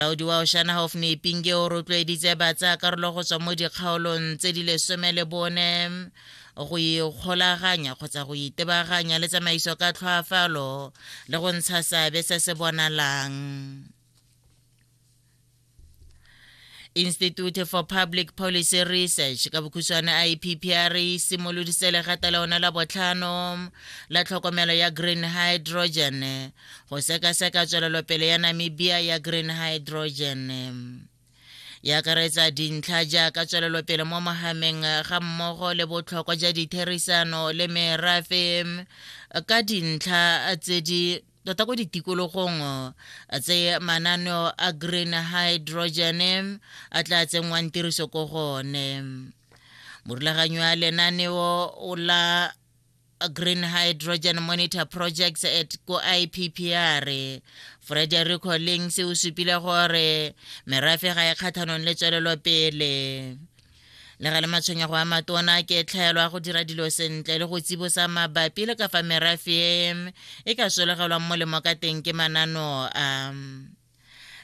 Molaodi wa Oshana Hofni Pinge o rotloeditse batsa karolo go tswa mo dikgaolong tse di lesome le bone go ikgolaganya kgotsa go itebaganya le tsamaiso ka tlhoafalo le go ntsha seabe se se bonalang institute for public policy research ka bokhutshwane ippr e simoloditse legata le one la botlhano la tlhokomelo ya green hydrogen go sekaseka tswelelopele ya namibia ya green hydrogen ya akaretsa dintlha jaaka tswelelopele mo mahameng ga mmogo le botlhokwa ja ditherisano le merafe ka dintlha tse di tota ko ditikologong tse mananeo a green hydrogen a tla tsenngwang tiriso ko gone morulaganyi wa lenaneo o la Green Hydrogen Monitor Projects at ko IPPR. Frederico Lings o supile gore merafe ga e kgathanong le tswelelopele le ga le matshwenyego a matona ke tlhaelo ya go dira dilo sentle le go tsibosa mabapi le ka fa merafe e ka solegelwang molemo ka teng ke manano a um.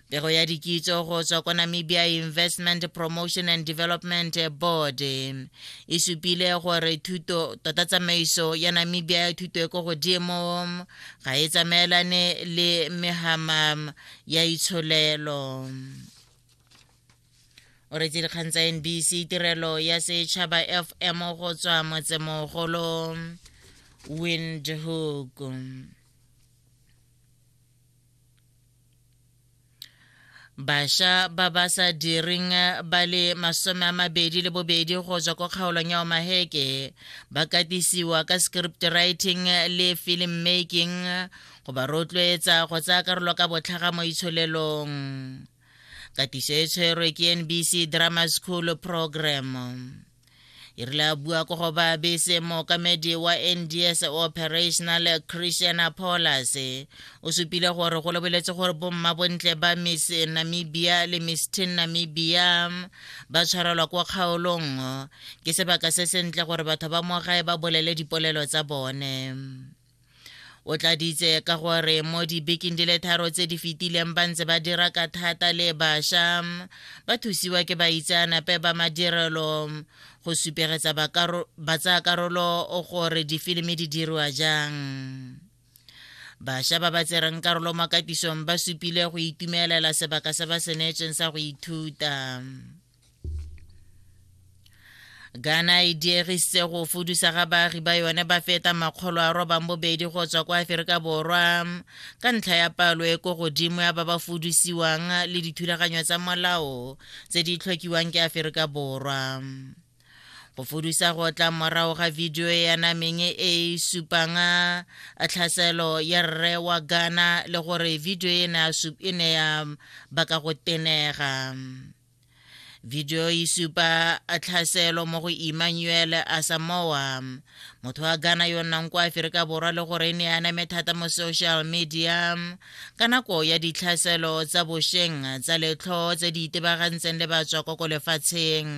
pego ya dikitso go tswa kwa namibia investment promotion and development board e supile gore thuto tota tsamaiso ya namibia ya thuto e ko godimo ga e tsamaelane le mehama ya itsholelo o retse dikgang tsa nbc tirelo ya setšhaba fm go tswa motsemogolo windhoek basha ba ba sa direng eh, ba le masome a mabedi le bobedi go tswa ko kgaolong ya omaheke ba katisiwa ka script writing eh, le film making eh, go ba rotloetsa go tsaya karolo ka botlhaga mo itsholelong katiso e tshwerwe ke nbc drama school program e rile a bua ko go baabese mookamedi wa nds operational christian apollas o supile gore go lebeletse gore bomma bontle ba miss namibia le miss tin namibia ba tshwarelwa kwa kgaolong ke sebaka se sentle gore batho ba mo gae ba bolele dipolelo tsa bone o tladitse ka gore mo dibekeng di le tharo tse di fetileng ba ntse ba dira ka thata le bašwa ba thusiwa ke baitseanape ba madirelo go supegetsa batsayakarolo gore difilimi di diriwa jang bašwa ba ba tsereng karolo mo katisong ba supile go itumelela sebaka se ba se neetsweng sa go ithuta ghana e diegisitse go fudusa ga baagi ba yone ba feta makgolo a robang bobedi go tswa kwa aferika borwa ka ntlha ya palo e ko godimo ya ba ba fudusiwang le dithulaganyo tsa molao tse di tlhokiwang ke aferika borwa go fudusa go tla morago ga vidio e yanameng e e supang a tlhaselo ya rre wa ghana le gore vidio e ne ya baka go tenega video e supa tlhaselo mo go emmanuel asamoa motho wa ghana yo nnang kwa aferika borwa le gore e ne a name thata mo social media ka nako ya ditlhaselo tsa bosheng tsa letlho tse di itebagantseng le batswakoko lefatsheng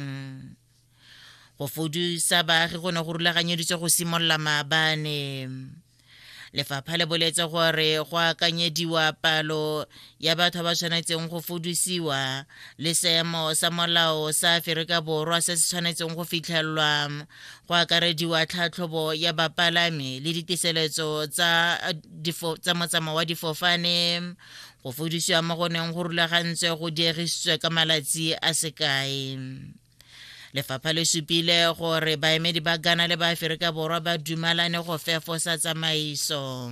go fodisa baagi go ne go rulaganyeditswe go simolola maabane lefapha le boletse gore go akanyediwa palo ya batho ba tshwanetseng go fodisiwa le seemo sa molao sa aferika borwa se se tshwanetseng go fitlhelelwa go akarediwa tlhatlhobo ya bapalami le ditiseletso tsa motsamao wa difofane go fodisiwa mo go neng go rulagantswe go diegisitswe ka malatsi a sekae lefapha le supile gore baemedi ba ghana le ba aferika borwa ba dumalane go fefosa tsamaiso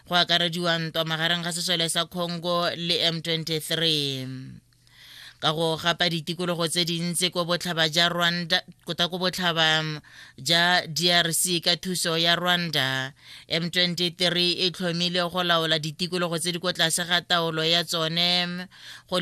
go akarediwa ntwa magareng ga sesole sa congo le m23 ka go gapa ditikologo tse dintsi ko botlhaba ja rwanda kota ko botlhaba ja drc ka thuso ya rwanda m23 e tlhomile go laola ditikologo tse di ko tlase ga taolo ya tsone go le